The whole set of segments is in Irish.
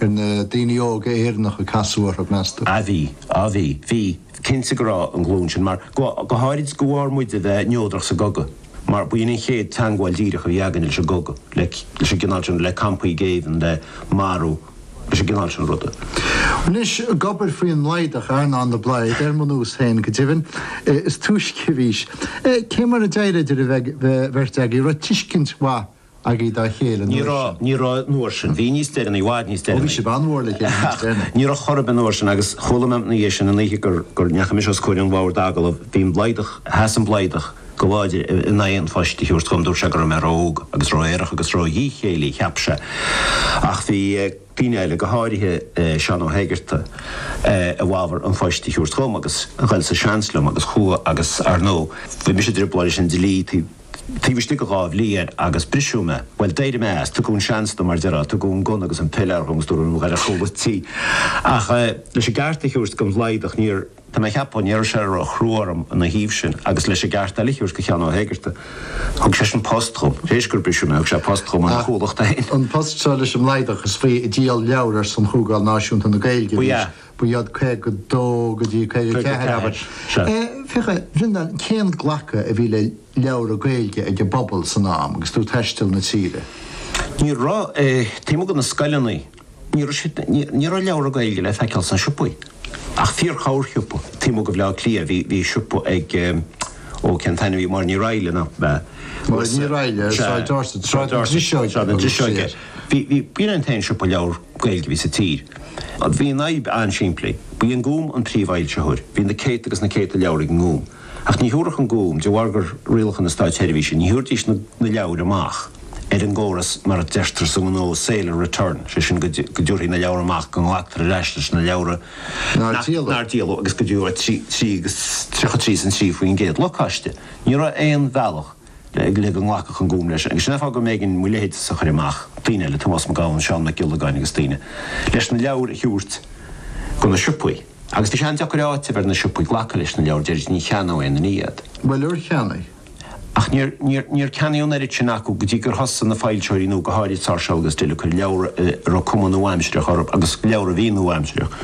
Ar na daoine óga Éireannacha a casadh orthu, meas tú? Ah bhí. Ah bhí. Bhí. Cinnte go raibh an ghlúin sin, mar go, go háirid de bharr muid a bheith neodrach sa gcogadh. Mar ba shin an chéad teangmháil díreach a bhí againne leis an gcogadh, le, leis an gcineál sin, le campaí géibhinn, le marú, leis an gcineál sin ruda. Anois, ag obair faoin mBlaghdach, Earnán de Blaghd, ar mo nós féin, go deimhin, is túisce a bhís. Cé mar a d'éirigh idir an bheirt agaibh? Raibh tuiscint mhaith agaibh dá chéile an uair sin? Ní raibh, ní raibh an uair sin. Bhí níos deireanaí, i bhfad níos deireanaí. Ó bhí sibh an-mhór le chéile níos deireanaí. Ach ní raibh chor ar bith an uair sin agus chuala mé ina dhiaidh sin an oíche gur, gur ndeachaigh mise os comhair an bhoird d'agallamh, bhí an Blaghdach, sheas an Blaghdach go láidir in aghaidh an phoist a thabhairt dhom, dúirt sé go raibh mé ró-óg agus ró-aerach agus ró-dhíchéillí, cheap sé. Ach bhí. daoine eile, go háirithe Seán Ó hÉigearta, i bhfabhar an phoist a thabhairt dhom agus ghoil sa seans liom agus chuaigh agus, ar ndóigh, bhí mise i dtrioblóid leis an dlí taobh istigh de dhá bhliain agus briseadh mé. Bhuel, d'éirigh mé as, tugadh an seans dom, mar a déarfá, tugadh an gunna agus an piléar dhom agus dúradh liom, gabh ar chúla tí. Ach leis an gceart a thabhairt don Bhlaghdach, níor. Tá mé ag ceapadh nár éirigh sé ró-chrua orm ina thaobh sin agus leis an gceart eile a thabhairt do Sheán Ó hÉigearta. Thug seisean post dhom. Tar éis gur briseadh mé thug sé post dhom ina chomhlacht féin. An post seo leis an mBlaghdach is faoi ag díol leabhra ar son Chomhdháil Náisiúnta na Gaeilge a bhí sé. Ba ea, 52 go dtí 54 leabhair é. Féach ar an cén glacadh a bhí le leabhra Gaeilge ag an bpobal san am agus tú ag taisteal na tíre. Ní raibh. Taobh amuigh de na scoileanna. Ní raibh leabhra Gaeilge le feiceáil sna siopaí, ach fíor-chorrshiopa. Taobh amuigh de Bhleá Cliath, bhí, bhí siopa ag ehm, ó cén t-ainm a bhí, Máire Ní Raghallaigh nach b'ea? Máire Ní Raghallaigh, Sea, Sráid Dorset, Sráid Dorset, Sráid na Driseoige a thugadh sí air. Sráid na Driseoige. Bhí, bhí, b'in an t-aon siopa leabhar Gaeilge a bhí sa tír. Bhí an fhadhb an-simplí. Ba í an Gúm an príomh-fhoilsitheoir. Bhí na céadta agus na céadta leabhar ag an nGúm. Ach ní thabharfadh an Gúm, de bharr gur rialacha na státseirbhíse, ní thabharfaidís na leabhair amach ar an gcóras mar a deirtear sa ngnó sale or return, sé sin go dtiúrfaí na leabhair amach, go nglactar ar ais leis na leabhair nár díoladh agus go dtiúrfaí agus 33 san 3% locáiste. Ní raibh aon bhealach le go nglacfadh an Gúm leis, agus sin an fáth go mb'éigean mo leithéidse a chur amach, daoine eile, Tomás Mac Gabhann, Seán Mac Giollagáin agus daoine, leis na leabhair a thabhairt go na siopaí. Agus bhí sé an-deacair a áiteamh ar na siopaí glacadh leis na leabhair deiridís, ní cheannóidh éinne iad. Bhuel, ar cheannaigh? Ach níor, níor, níor ceannaíodh an oiread sin acu go dtí gur thosaigh na foilsitheoirí nua, go háirid Sáirséal agus Dill, ag cur leabhar a raibh cuma nua-aimsireach orthu, agus leabhar a bhí nua-aimsireach,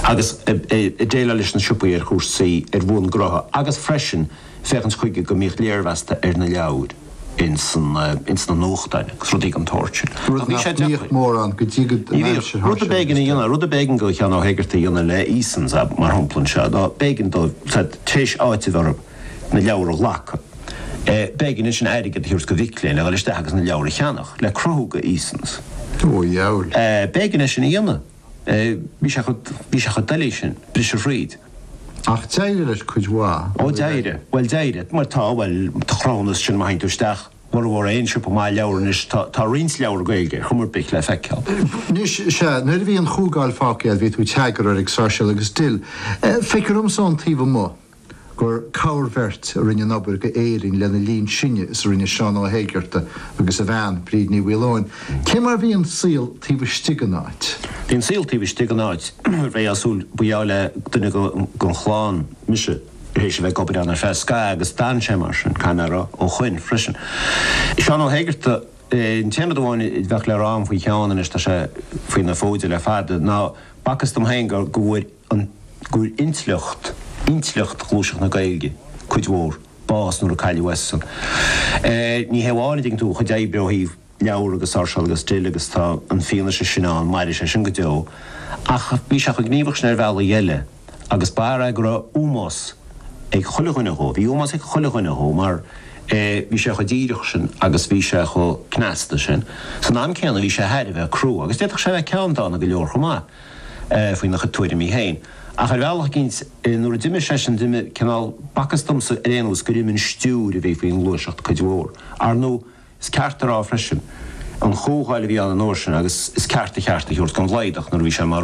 agus ag déileáil leis na siopaí ar chúrsaí, ar bhonn gnótha, agus freisin, féachaint chuige go mbíodh léirmheasanna ar na leabhair ins na nuachtáin agus rudaí den tsórt sin. Rud nach mbíodh mórán go dtí go dtí an aimsir thart sin, is dóigh. Rud a b'éigean do Sheán Ó hÉigeartaigh a dhéanamh le Easons mar shampla anseo ná, b'éigean dó, tar éis áiteamh orthu na leabhair a ghlacadh, b'éigean dó ansin airgead a thabhairt do mhic léinn le dhul isteach agus na leabhair a cheannach le cruthú do Easons. B'éigean é sin a dhéanamh. Bhí sé chomh, bhí sé chomh doiligh sin, briseadh tríd. Ach d'éirigh leis cuid mhaith.. Ó d'éirigh, bhuel d'éirigh, mar tá, bhuel, tá a chruthúnas sin má théann tú isteach, i mbeagnach aon siopa maith leabhar anois tá, tá roinnt leabhar Gaeilge ar chuma ar bith le feiceáil. Anois, sea, nuair a bhí an Chomhdháil fágtha agat bhí tú i d'eagarthóir ag Sáirséal agus Dill. Feictear dhomsa ón taobh amuigh. gur corrbheirt a rinne an oiread d'Éirinn lena linn sinne is a rinne Seán Ó hÉigeartaigh agus a bhean, Bríd Ní Mhaoileoin. Cé mar bhí an saol taobh istigh an áit? Bhí an saol taobh istigh an áit réásúil. Ba gheall le duine den chlann mise tar éis a bheith ag obair ann ar feadh scaithimh agus d'fhan sé mar sin. Caithfidh mé a rá, ó shin freisin. Seán Ó hÉigeartaigh, an t-aon rud amháin a bheadh le rá agam faoi Sheán anois tá sé faoi na fóid le fada, ná b'fhacthas dom féin go bhfuair an, go, intleacht, intleacht Ghluaiseacht na Gaeilge, cuid mhór, bás nuair a cailleadh eisean. Eh, ní hé amháin, an dtuigeann tú, a chuid oibre ó thaobh leabhar agus Sáirséal agus Dill agus tá an fhianaise sin ann, mairfidh sé sin go deo. Ach bhí sé chomh gníomhach sin ar bhealaí eile agus b'fhear é go raibh ómós ag chuile dhuine dhó, bhí ómós ag chuile dhuine dhó mar, eh, bhí sé chomh díreach sin agus bhí sé chomh cneasta sin. San am céanna bhí sé thar a bheith crua agus d'fhéadfadh sé a bheith ceanndána go leor chomh maith. faoina chuid tuairimí féin. Ach ar bhealach eicínt, nuair a d'imigh seisean, d'imigh cineál b'fhacthas domsa ar aon nós gur imigh an stiúir a bhí faoin ngluaiseacht cuid mhór. Ar ndú, is ceart a rá freisin, an chomhdháil a bhí ann an uair sin agus is ceart a cheart a thabhairt don Bhlaghadach nuair a bhí sé mar